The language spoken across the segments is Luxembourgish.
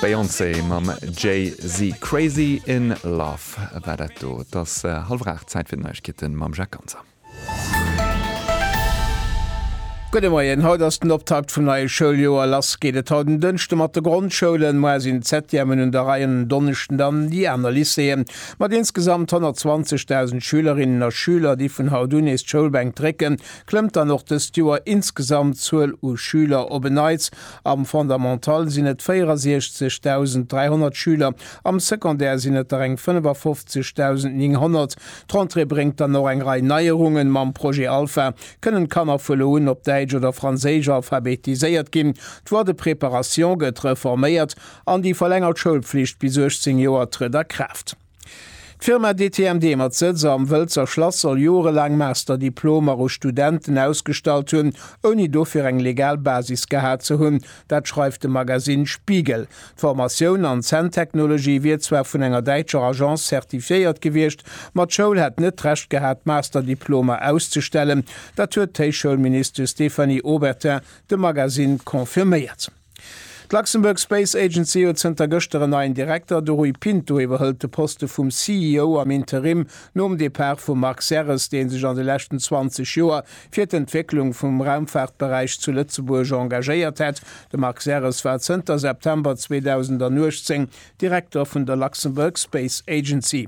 D'Beyoncé mam Jay-Z, Crazy in Love war dat do. Et ass hallwer 8, Zäit fir d'Neiegkeete mam Jacques Ganser. Gudde Moien, haut ass den Optakt vum neie Schouljoer. Lass geet et haut en Dënschde mat de Grondschoulen. Moar sinn d'Septièmen un der Rei an en Donneschden dann déi aner Lycéeën. Mat insgesamt 120.000 Schülerinnen a Schüler, déi vun haut un nees d'Schoulbänk drécken, klëmmt dann och dëst Joer insgesamt d'Zuel u Schüler op en Neits. Am Fondamental sinn et 64.300 Schüler, am Secondaire sinn et der eng 55.900. D'Rentrée bréngt dann och eng Rei Neierungen. Mam Projet Alpha kënnen d'Kanner vu lo un op Däitsch oder Franséisch alphabetiséiert ginn, d'Voie de préparation gëtt reforméiert an déi verlängert Schoulpflicht bis 18 Joer trëtt a Kraaft. D'Firma DTMD mat Sëtz am Wëlzer Schlass soll jorelaang Masterdiplomer u Studenten ausgestallt hunn, ouni dofir eng legal Basis gehat ze hunn. Dat schreift de Magasinn Spiegel. D'Formatioun an Zänntechnologie wier zwar vun enger däitscher Agence zertifiéiert gewiescht, ma d'Schoul hätt net d'Recht gehat, d'Masterdiplomer auszestellen. Dat huet d'Héichschoulministesch Stéphanie Obertin dem Magasinn confirméiert. D'Luxembourg Space Agency huet zënter gëschter en neien Direkter, de Rui Pinto iwwerhëlt de Poste vum CEO am Interim nom Depart vum Marc Serres, dee sech an de leschten 20 Joer fir d'Entwécklung vum Raumfaartberäich zu Lëtzebuerg engagéiert hätt. De Marc Serres war zënter September 2018 Direkter vun der Luxembourg Space Agency.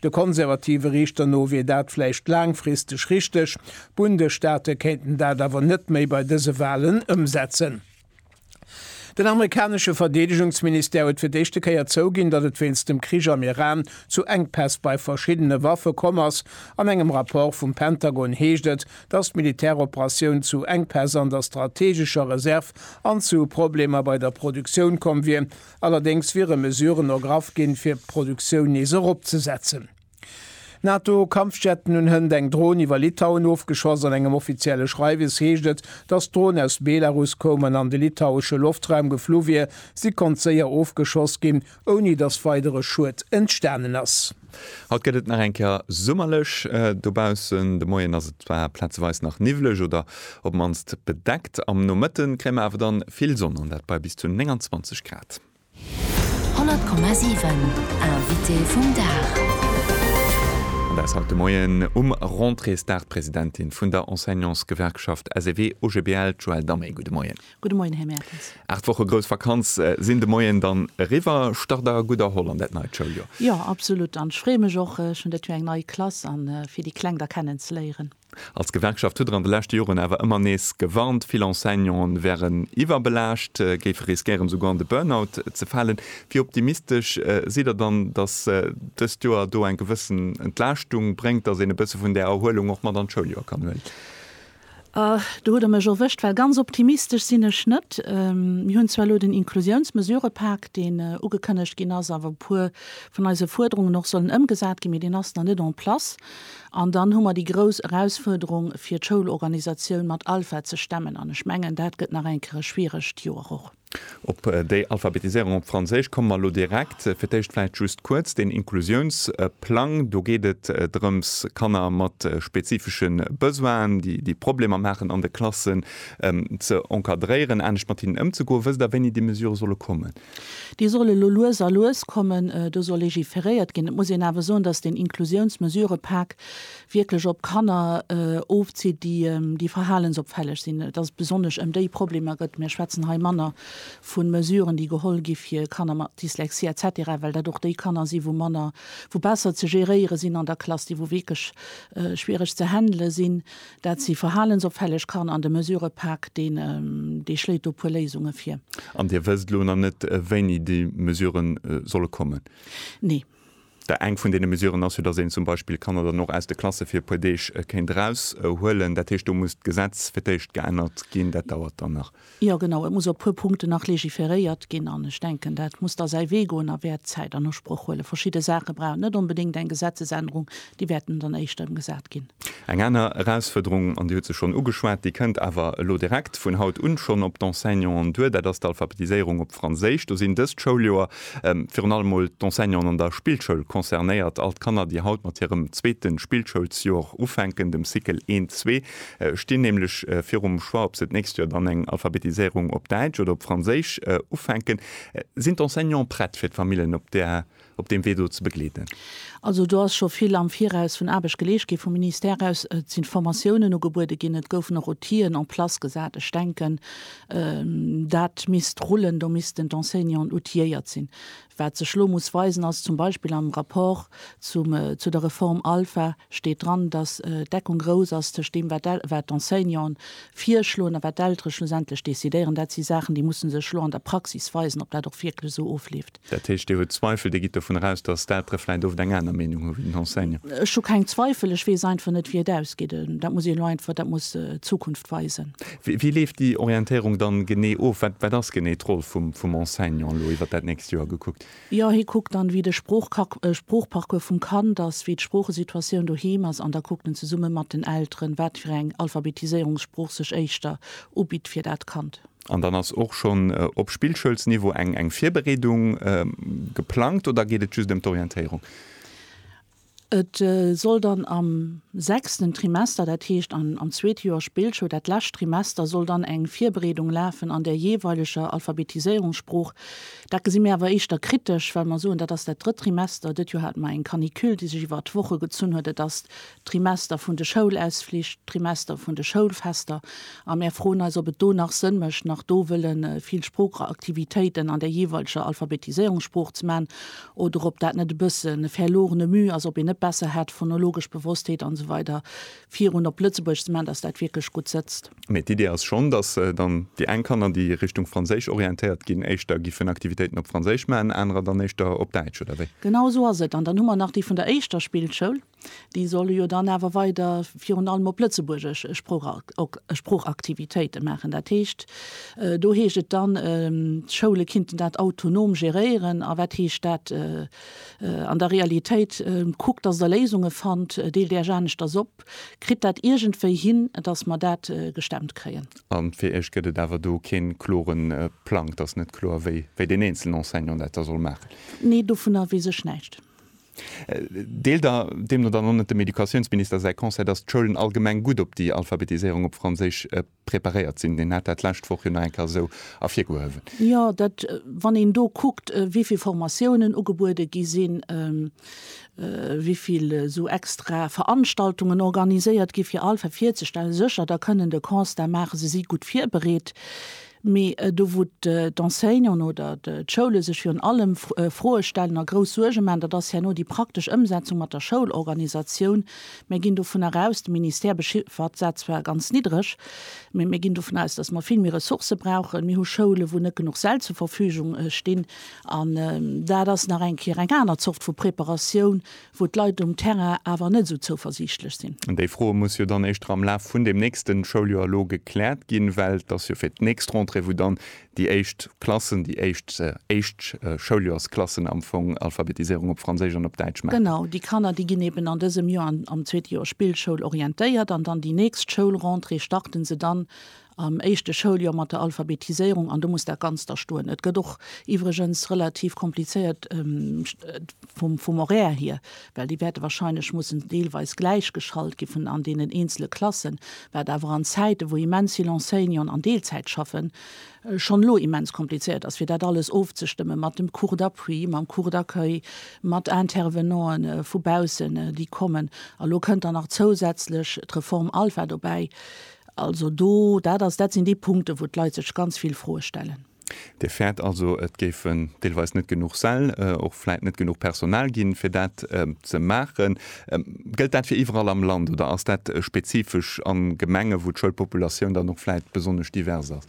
De konservative Riichter no wier dat vläicht laangfristeg richteg, d'Bundesstaate kéinten dat awer net méi bei dëse Walen ëmsetzen. Den amerikanesche Verdeedegungsministère huet fir d'éischte Kéier zouginn, datt et wéinst dem Krich am Iran zu Enkpäss bei verschiddene Waffe komm ass. An engem Rapport vum Pentagon heescht et, datt d'Militäroperatioun zu Enkpäss an der strateegescher Reserv an zu Problemer bei der Produktioun komm wier. Allerdéngs wiere Mesuren ergraff ginn, fir d'Produktioun nees eropzesetzen. NATO-Kampfjetten un Hënt eng Dron iwwer Litauen ofgeschoss. An engem offizielle Schreiwes heescht et, datt d'Dron aus Belarus koum an an de litauesche Loftraum geflu wier. Si konnt séier ofgeschoss ginn, ouni datt weidere Schued entstanen ass. Haut gëtt et nach eng Kéier summerlech dobaussen. De Moien ass et zwar plazeweis nach niwwlech oder op d'mannst bedeckt. Am Nomëtte kréie mer awer dann vill Sonn an dat bei bis zu 29 Grad. 100,7 Invité vum Dag. An dat ass haut de Moien um Rentréesdag d'Presidentin vun der Enseignantsgewerkschaft SEW-OGBL, d'Joëlle Damé. Gudde Moien. Gudde Moien, Här Mertens. Aacht Woche grouss Vakanz sinn de Moien dann eriwwer. Start der gutt erholl an dat neit Schouljoer? Jo, absolut. An ech freeë mech och. Ech hunn dat Joer eng nei Klass a fir déi Kleng da kennen ze léieren. Als Gewerkschaft hutt Der an de leschte Joren awer ëmmer nees gewarnt, vill Enseignanten wären iwwerbelaascht, géife riskéieren, esouguer an de Burnout ze falen. Wéi optimistesch sidd Der dann, dass dëst Joer do eng gewëssen Entlaaschtung bréngt, dass een e bësse vun där Erhuelung och mat an d'Schouljoer kann huelen? Do hutt Der mech erwëscht, well ganz optimistesch sinn ech net. Mir hunn zwar elo den Inklusiounsmesurepak, deen ugekënnegt ginn ass a wou e puer vun eise Fuerderungen och sollen ëmgesat ginn, mee deen ass nach net en place. An dann hu mer déi grouss Erausfuerderung, fir d'Schoulorganisatioun mat Alpha ze stemmen. An ech mengen, dat gëtt nach eng Kéier e schwieregt Joer och. Op déi Alphabetiséierung op Franséisch komme mer elo direkt. Fir d'éischt vläicht just kuerz den Inklusiounsplang. Do geet et drëms, Kanner mat spezifesche Besoinen, déi Problemer maachen an de Klassen, ze encadréieren, anescht mat hinnen ëmzegoen. Wësst Der, wéini déi Mesurë solle kommen? Déi solle lo lues a lues kommen. Do soll legiferéiert ginn. Et muss een awer soen, dass den Inklusiounsmesurëpak wierklech op Kanner ofzitt, déi verhalensopfälleg sinn, dass et besonnesch ëm déi Problemer gëtt. Mir schwätzen hei manner vu Mesuren, déi geholl gi fir Kanner mat Dyslexie et cetera, well dat och déi Kanner sinn, wou manner, wou besser ze géréiere sinn an der Klass, déi wou wierklech schwiereg ze handelen sinn. Dat si verhalensopfälleg Kanner an de Mesurëpak, dee schléit do e puer Léisunge vir. An Dir wësst elo nach net, wéini déi Mesuren solle kommen? Nee. Där eng vun deene Mesuren ass jo, dass een zum Beispill d'Kanner dann och aus de Klasse fir e puer Deeg kéint eraushuelen. Dat heescht, do muss d'Gesetz fir d'éischt geännert ginn. Dat dauert dann nach. Jo, genau. Et muss op e puer Punkten nach legiferéiert ginn. An ech denken, dat muss da säi Wee goen a wäert Zäit an Usproch huelen. Verschidde Saache brauchen net onbedéngt eng Gesetzesännerung. Déi wäerten dann éischter ëmgesat ginn. Eng aner Erausfuerderung, an Dir hutt se schonn ugeschwat, déi kënnt awer elo direkt vun haut un schonn op d'Enseignanten duer, dat ass d'Alphabetiséierung op Franséisch. Do sinn dëst Schouljoer Virun allem mol d'Enseignanten an der Spillschoul concernéiert. All d'Kanner, déi haut mat hirem zweete Spillschoulsjoer ufänken, dem Cycle I, ii, stinn nämlech virum Choix, ob se d'nächst Joer dann eng Alphabetiséierung op Däitsch oder op Franséisch ufänken. Sinn d'Enseignanten prett, fir d'Famillen op där, op deem Wee do ze begleeden? Also do ass scho vill am Viraus vun Aarbecht geleescht gi vum Ministère aus. Et sinn Formatiounen ugebuede ginn, et goufen och Outill'en en place gesat. Ech denken, Dat misst rullen, do missten d'Enseignanten outilléiert sinn. Wat sech elo muss weisen, ass zum Beispill am Rapport zum, zu der Reform Alpha steet dran, datt d'Deckung grouss ass tëscht deem, wat d'El-, wat d'Enseignanten virschloen a wat d'Eltere schlussendlech decidéieren. Dat si Saachen, déi musse sech elo an der Praxis weisen, ob dat och wierklech esou ofleeft. Dat heescht, Dir hutt Zweifel, Dir gitt dovun eraus, datt d'adr vläicht oft eng aner Meenung hu wéi den Henseng? Ech hu keng Zweifel, ech weess einfach net, wéi et ausgeet. Dat muss een elo einfach, dat muss d'Zukunft weisen. Wéi leeft déi Orientéierung dann genee of? Wat, wat ass genee d'Roll vum, vum Enseignant elo iwwert dat nächst Joer gekuckt? Jo, hie kuckt dann, wéi de Sproochkac, Sproochparcours vum Kand ass, wéi d'Sproochesituatioun doheem ass an da kuckt en zesumme mat den Elteren, wat fir eng Alphabetiséierungssprooch sech éischter ubitt fir dat Kand. An dann ass och schonn op Spillschoulsniveau eng eng Virbereedung geplangt oder geet et just ëm d'Orientéierung? Et soll dann am sechsten Trimester, dat heescht am zweete Joer Spillschoul, dat lescht Trimester, soll dann eng Virbereedung lafen an der jeeweileger Alphabetiséierungssprooch. Dat gesi mir awer éischter kritesch, well mer soen, dat ass dat drëtt Trimester. Dët Joer hate mer eng Canicule, déi sech iwwert Woche gezunn huet. Et ass Trimester vun de Schoulausflich, d'Trimester vun de Schoulfester, a mär froen eis, ob et do nach Sënn mécht, nach do wëlle vill Sproocheraktivitéiten an der jeeweileger Alphabetiséierungssprooch ze man, oder ob dat net e bëssen e verlorene Müh ass, ob een net besser hätt, phonologesch Bewusstheet an esou weider virun op Lëtzebuergesch ze man, dass dat wierklech gutt sëtzt. Mee d'Idee ass schonn, dass dann déi eng Kanner, déi Richtung Franséisch orientéiert ginn, éischter giffen Aktivitéiten op Franséisch man, anerer dann éischter op Däitsch, oder wéi? Genau esou ass et. An dann hu mer nach déi vun der éischter Spillschoul. Déi solle jo dann awer weider virun allem op Lëtzebuergesch Sproochaktivitéite maachen. Dat heescht, do heescht et dann, d'Schoule kinnten dat autonom geréieren. A wat heescht dat an der Realitéit? Kuckt, datt Der Léisunge fannt, deelt Iech aneschters op, kritt dat iergendwéi hin, datt mer dat gestemmt kréien. A fir Iech gëtt et awer do kee klore Plang? Et ass net kloer, wéi deen eenzelen Enseignant dat da soll maachen? Nee, dovunner weess ech näischt. Deelt Der deemno dann och net dem Educatiounsminister säi Conseil, datt d'Schoulen allgemeng gutt op déi Alphabetiséierung op Franséisch preparéiert sinn? Deen hat dat d'lescht Woch jo nach eng Kéier esou ervirgehuewen. Jo, dat, wann een do kuckt, wéi vill Formatiounen ugebuede gi sinn, wéi vill esou extra Veranstaltungen organiséiert gi fir Alpha virzestellen, sécher, da kënnen de Constat maachen, se si gutt virbereet. Mee do wou d'Enseignanten oder d'Schoule sech virun allem Froe stellen a grouss Suerge maachen, dat ass herno déi praktesch Ëmsetzung mat der Schoulorganisatioun. Mir ginn dovunner aus, de Ministère bechiffert dat zwar ganz niddreg, mee mir ginn dovun aus, datt mer vill méi Ressourcë brauchen. Mir hu Schoulen, wou net genuch Säll zur Verfügung stinn. An dat ass nach eng Kéier eng aner Zort vu Preparatioun wou d'Leit um Terrain awer net esou zouversiichtlech sinn. Déi Froe muss jo dann éischter am Laf vun deem nächste Schouljoer elo gekläert ginn, well et ass jo fir d'nächst Rentrée, wou dann déi éischt Klassen, déi éischt éischt Schouljoersklassen am Fong Alphabetiséierung op Franséisch an op Däitsch maachen. Genau, déi Kanner, déi ginn eben an dësem Joer am zweete Joer Spillschoul orientéiert an dann déi nächst Schoulrentrée starten se dann am éischte Schouljoer mat der Alphabetiséierung an do muss dat Ganzt da stoen. Et gëtt och iwwregens relativ komplizéiert vum, vum Horaire hier, well déi wäerte wahrscheinlech mussen deelweis gläich geschalt gi vun an deenen eenzele Klassen, wat awer an Zäite wou immens vill Enseignanten an Deelzäit schaffen, schonn elo immens komplizéiert ass fir dat alles ofzestëmme mat dem Cours d'appui, mam Cours d'accueil, mat Intervenanten vu baussen déi kommen. A lo kënnt dann nach zousätzlech d'Reform Alpha dobäi. Also do, dat ass, dat sinn déi Punkten, wou d'Leit sech ganz vill Froe stellen. Dir fäert also, et géifen deelweis net genuch Säll, och vläit net genuch Personal ginn, fir dat ze maachen. Gëllt dat fir iwwerall am Land oder ass dat spezifesch a Gemenge wou d'Schoulpopulatioun dann och vläit besonnesch divers ass?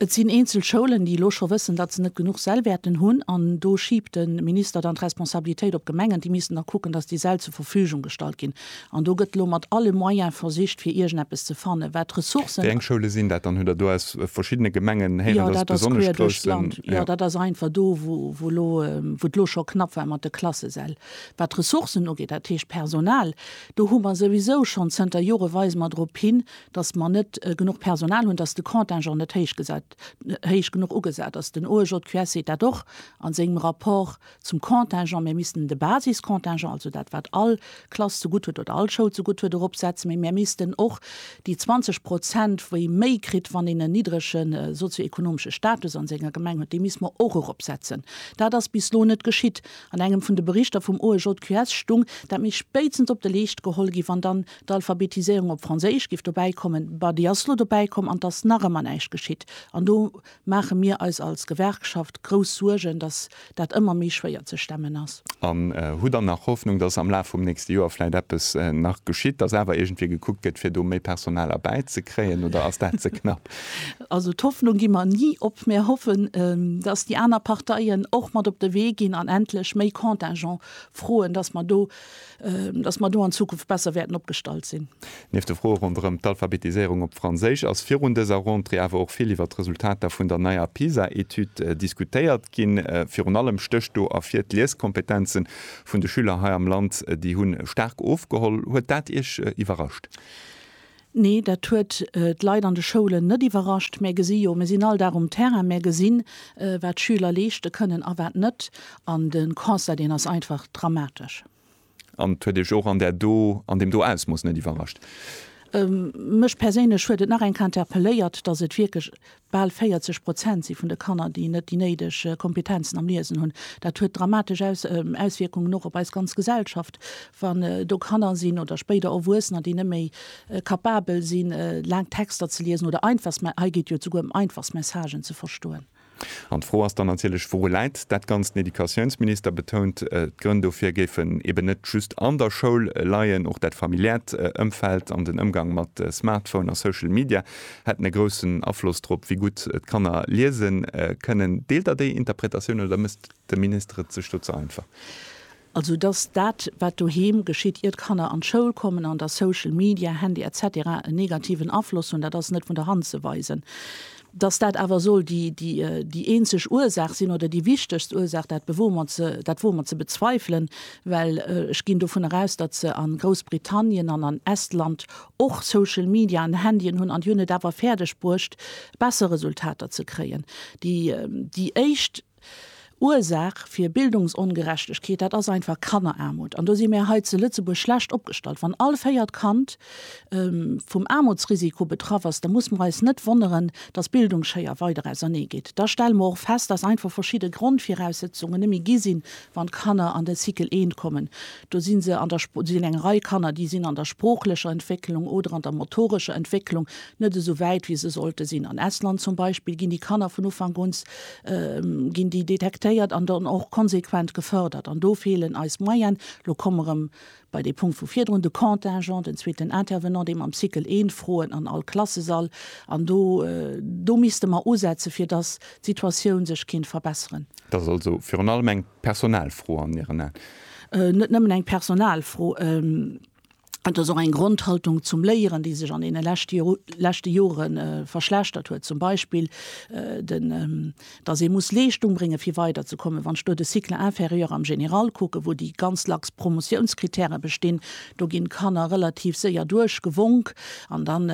Et sinn eenzel Schoulen, déi elo scho wëssen, datt se net genuch Säll wäerten hunn. An do schiibt de Minister dann d'Responsabilitéit op d'Gemengen. Déi missten da kucken, datt déi Säll zur Verfügung gestallt ginn. An do gëtt elo mat alle Moyen versicht, fir iergendeppes ze fannen, wat d'Ressourcen. Wéi eng Schoule sinn dat dann? Hutt Der do aus verschiddene Gemengen héieren, datt et besonnesch grouss sinn? Jo, dat ass queesch duerch d'Land. Jo, dat ass einfach do, wou elo, wou et elo scho knapp war mat de Klassesäll. Wat d'Ressourcen ugeet, dat heescht d'Personal, do hu mer souwisou schonn zënter Jore weise mer drop hin, dass mer net genuch Personal hunn, dass de Contingent net héich genuch ugesat ass. Den OEJQS seet dat och a sengem Rapport zum Contingent. Mir missten de Basiscontingent, also dat wat all Klass zegutt huet oder all Schoul zegutt huet, eropsetzen, mee mir missten och déi 20 Prozent, wéi méi kritt, wann een en niddrege sozio-ekonomesche Status a senger Gemeng huet, déi misste mer och eropsetzen. Dat ass bis elo net geschitt. An engem vun de Berichter vum OEJQS stung, dat misst spéitstens op de Leescht geholl ginn, wann dann D'Alphabetiséierung op Franséisch giff dobäi kommen, bah déi ass lo dobäi komm an et ass nach ëmmer näischt geschitt. An do maache mir eis als Gewerkschaft grouss Suergen, datt dat ëmmer méi schwéier ze stemmen ass. An hu dann nach Hoffnung, datt am Laf vum nächste Joer vläit eppes nach geschitt, datt awer iergendwéi gekuckt gëtt, fir do méi Personal erbäi ze kréien, oder ass dat ze knapp? Also d'Hoffnung gi mer ni op. Mir hoffen, datt déi aner Parteien och mat op de Wee ginn an endlech méi Contingent froen, datt mer do datt mer do an Zukunft besser wäerten opgestallt sinn. Nieft de Froe ronderëm d'Alphabetiséierung op Franséisch ass virun dëser Rentrée awer och vill iwwert d'Resultater vun der neier PISA-Etüd diskutéiert ginn. Virun allem stécht do ervir d'Lieskompetenze vun de Schüler hei am Land, déi hu staark ofgeholl. Huet dat Iech iwwerrascht? Nee, dat huet d'Leit an de Schoulen net iwwerrascht. Mär gesi jo, mir sinn all Dag um Terrain, mär gesinn, wat d'Schüler leeschte kënnen a wat net. An de Constat, deen ass einfach dramatesch. An et huet Iech och an där do, an deem do Ausmooss net iwwerrascht? Mech perséinlech huet et nach eng Kéier interpelléiert, dass et wierklech Bal 40 Prozent si vun de Kanner, déi net déi néideg Kompetenzen am Liesen hunn. Dat huet dramatesch Auswierkungen och op eis ganz Gesellschaft, wann do Kanner sinn oder spéider Erwuessener, déi net méi kapabel si laang Texter ze liesen oder einfachst, mä hei geet et jo esouguer ëm einfachst Messagen ze verstoen. An d'Fro ass dann natierlech, Wouru läit dat Ganzt? Den Educatiounsminister betount, d'Grënn dofir géifen eben net just an der Schoul leien. Och dat familiäert Ëmfeld an den Ëmgang mat Smartphone a Social Media hätten e groussen Afloss drop, wéi gutt d'Kanner liese kënnen. Deelt Der déi Interpretatioun oder mécht de Minister et sech do ze einfach? Also datt dat, wat doheem geschitt, ier d'Kanner an d'Schoul kommen, an datt Social Media, Handy etc. En negativen Afloss hunn, dat ass net vun der Hand ze weisen. Datt dat awer soll déi eenzeg Ursaach sinn oder déi wichtegst Ursaach, dat bewoe mer ze, dat woe mer ze bezweifelen, well ech ginn dovunner aus, datt se a Groussbritannien an an Estland, Och Social Media an Handyen hunn an déi hunn et awer fäerdeg bruecht, besser Resultater ze kréien. Déi, déi éischt Ursaach fir Bildungsongerechtegkeet, dat ass einfach Kanneraarmut. An do si mir hei zu Lëtzebuerg schlecht opgestallt. Wann all véiert Kand vum Aarmutsrisiko betraff ass, da muss mer eis net wonneren, dass Bildungsschéier weider ausernee geet. Da stelle mer och fest, dass einfach verschidde Grondviraussetzungen net méi gi sinn, Wann d'Kanner an den Cycle I kommen, do si se an der, do sinn eng Rei Kanner, déi sinn an der sproochlecher Entwécklung oder an der motorescher Entwécklung net esou wäit, wéi se sollte sinn. An Estland zum Beispill ginn déi Kanner vun Ufank un, ginn déi detektéiert an dann och konsequent gefërdert. An do feelen eis Moyene. Elo komme rëm Bei dee Punkt vu virdrun, de Contingent, den zweeten Intervenant, dee mam Cycle eent Froen an all Klassesall, an do, do misste mer usetze fir dass d'Situatioun sech kinnt verbesseren. Dat ass also virun allem eng Personalfro an Iren Aen? Net nëmmen eng Personalfro, et ass och eng Grondhaltung zum Léieren, déi sech an deene leschte Jore verschlechtert huet. Zum Beispill den, dass ee muss Leeschtung brénge fir weider ze kommen. Wann ech do de Cycle inférieur am Général kucken, wou déi ganz lax Promotiounskritäre bestinn, do ginn d'Kanner relativ séier duerchgewonk an dann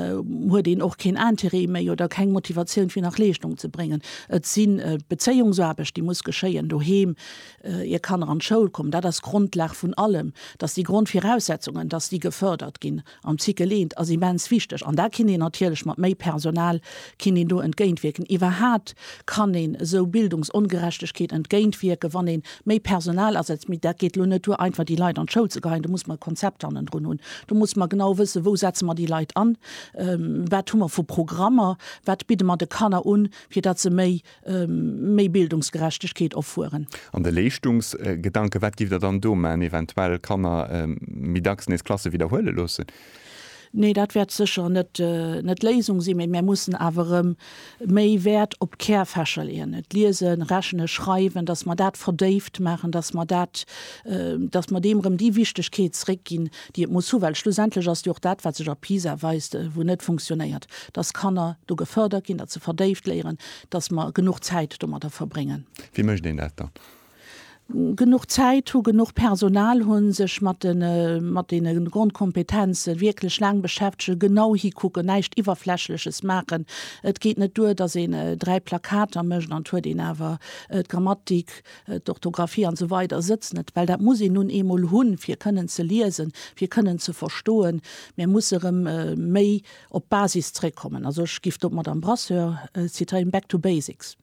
huet een och keen Intérêt méi oder keng Motivatioun fir nach Leeschtung ze bréngen. Et si Bezéiungsaarbecht déi muss geschéien doheem, ier Kanner an d'Schoul kommen. Dat ass d'Grondlag vun allem, dass déi Grondviraussetzungen, dass déi gefërdert ginn. An d'Cycle eent ass immens wichteg an da kinnt een natierlech mat méi Personal kinnt een do entgéintwierken. Iwwerhaat kann een esou Bildungsongerechtegkeet entgéintwierken, wann een méi Personal asetzt. Mee dat geet elo net duer einfach déi Leit an d'Schoul ze geheien. Do muss mer e Konzept hannendrun hunn. Do muss mer genau wëssen, wou setze mer déi Leit an, wat hu mer vu Programmer, wat bidde mer de Kanner un, fir datt se méi Méi Bildungsgerechtegkeet offueren. An de Leeschtungsgedanken, wat giff Der dann do man? Eventuell Kanner méi dacks nees Klasse widderhuele loossen? Nee, dat wäert sécher net d'Léisung sinn. Mee mär mussen awer erëm méi Wäert op d'Kärfächer leeën, et Liesen, Rechnen, Schreiwen, datt mer dat verdéift maachen, datt mer dat, datt mer deem erëm déi Wichtegkeet zréckginn. déi et muss hu, well schlussendlech ass jo och dat, wat sech a PISA weist, wou net funktionéiert, dass Kanner do gefërdert ginn, dass se verdéift léieren, dass mer genuch Zäit domadder verbréngen. Wéi mécht een dat dann? Genuch Zäit hu, genuch Personal hu, sech mat de mat deene Grondkompetenze wierklech laang beschäftegen, genau hikucken, näischt Iwwerflächleches maachen. Et geet net duer, dass een dräi Plakater mécht an et huet een awer d'Grammatik, d'Orthographie an esou weider sëtzt net, well dat muss een nun eemol hunn, fir kënnen ze liesen, fir kënnen ze verstoen. Mir musse erëm méi op d'Basis zréckkommen. Also ech giff do d'Madame Brasseur zitieren, back to basics.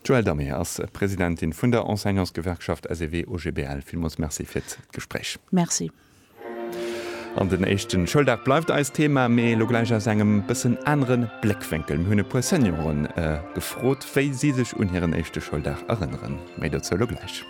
D'Joëlle Damer ass Presidentin vun der Enseignantsgewerkschaft SEW-OGBL. Villmools Merci fir d'Gespréich. Merci. An den éischten Schouldag bleift eist Thema, mee elo gläich aus engem bëssen aneren Bléckwénkel. Mir hunn e puer Senioren gefrot, wéi si sech un hiren éischte Schouldag erënneren. Méi dozou elo gläich.